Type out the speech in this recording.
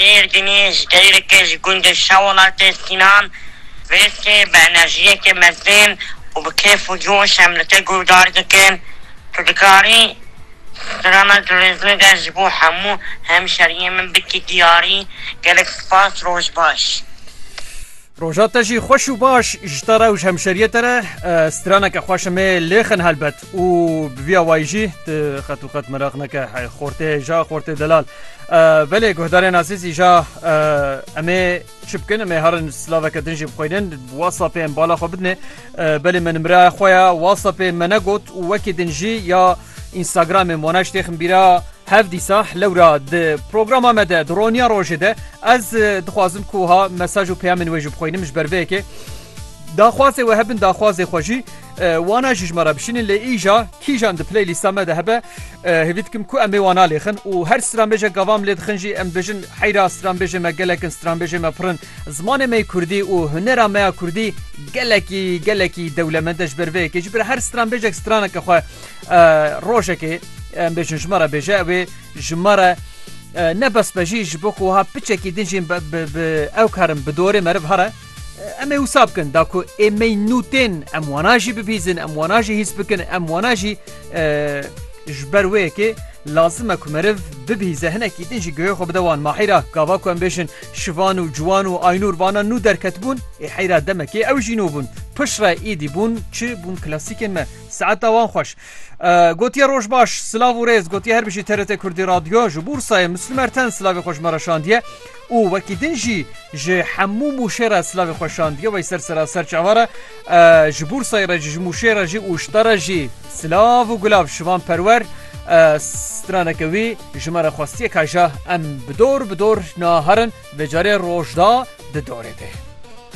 Êrdînê ji deyreke ji gundê Şewelatê Sînan vêstê bi enerjiyeke mezin û bi kêf û coş em li te guhdar dikin. Tu dikarî strana Dirêzlê de ji bo hemû hemşeriyên min bikî diyarî. Gelek spas roj baş. Roja te jî xweş û baş ji te re û ji hemşeriyê te re. Straneke xweş em ê lêxin helbet û bi vî awayî jî tu qet û qet meraq neke hey xortê ja xortê delal. Belê guhdarên azîzî ja em ê çi bikin em ê herin silaveke din jî bixwînin WhatsAppê em bala xwe bidinê belê me nimreya xwe ya WhatsAppê me negot û wekî din jî ya Instagramê Mona ji têxim bîra hev dîsah lewra di programa me de di roniya rojê de ez dixwazim ku ha mesaj û peyamên wê ji bixwînim ji ber vê yekê daxwazê we hebin daxwazê xwe jî wana ji me re bişînin lê îja kîjan di playlîsta me de hebe hêvî dikim ku em ê wana lêxin û her stranbêje gavam lê dixin jî em dibêjin heyra stranbêjê me gelekin stranbêjê me pirin Zimanê me kurdî û hunera me ya kurdî gelekî gelekî dewlemend e ji ber vê yekê ji ber her stranbêjek straneke xwe rojekê em bêjin ji me re bêje ew ê ji me re ne bes be jî ji bo ku wiha piçekî din jî ew karin bi dorê meriv here em ê wisa bikin da ku ê me nû tên em wana jî bibîzin em wana jî hîs bikin em wana jî ji ber wê yekê lazim e ku meriv bibîze hinekî din jî guhê xwe bide wan mahîra gava ku em bêjin Şivan û Ciwan û Aynûr bana nû derketibûn, ê heyra demekê ew jî nû bûn. Piştre êdî bûn çi bûn klasîkên me. Saeta wan xweş. Gotiye roj baş, silav û rêz, gotiye her bijî TRT Kurdî Radyo, ji Bûrsayê Mislûm Erten silavê xwe ji me re şandiye û wekî din jî ji hemû mûşê re silavê xwe şandiye, wey ser seraser çawa re. Ji Bûrsayê re jî, ji Mûşê re jî û ji te re jî silav û gulav şivan perwer. Straneke wî ji me re xwestiye ka ja em bi dor bi dor naherin, vê carê roj da di dorê de.